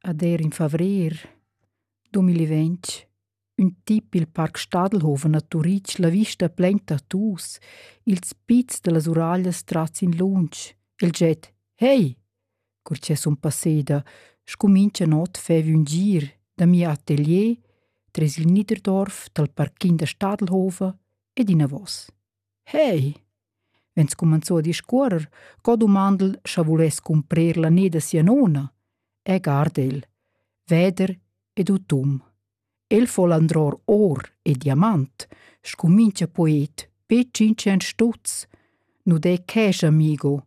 Ad er in favrer 2020 ün tip il Parc Stadelhofen a Turitg la vista plain tattoos, ils pizs da las uraglias trats in lunsch, il jet «Hey!» cur cha sun passeda, scumincha not faiv ün gir da mia atelier tres il Niederdorf dal parquin da Stadelhofen ed inavos. Hey! vegn scumanzù a discuorrer co dumandel scha vuless cumprer la ne da sia nona, e guard el, veder ed utum. El fol andror or e diamant, scumincha poet be tschintschient stutz. Nu de cash, amigo,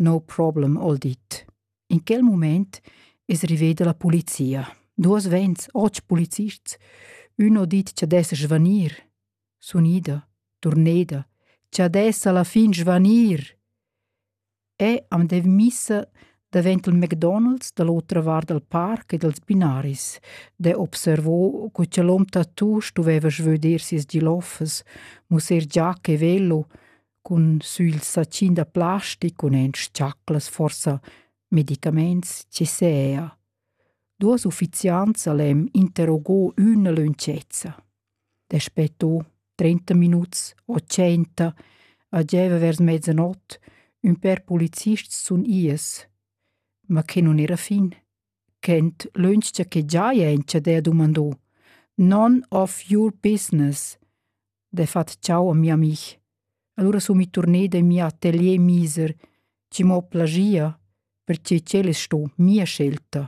no problem, hol dit. In quel mument es riveda la polizia. Duos vents, otg polizists, ün ho dit cha dess svanir. sun ida, turneda, cha dessa la fin svanir. E am dev missa davent il McDonald's dall'otra vart dal parc e dals binaris, de observo co cha l'hom tattoo stuveva svöder sias giloffas, musser giacca e velo, cun sü il sacin da plastic cun en sciaclas forsa medicaments che sea. Duas uffiziants al hem interrogò üna lönchezza. Daspö to, trenta minuts o tschenta, a gieva vers mezzanot, ün pêr polizists sun ies, ma que nun era fin. Quent lönch cha que giaja inscha d'he dumandò: «None of your business!» Dafat ciao a mia amih. Alura sun mi turneda in mia atelier miser, chi m'ho plagia, perche ch'el es sto mia scelta.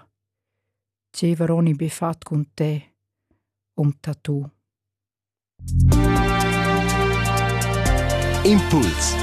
Gieva Roni be fat cun te, um tatu. Impuls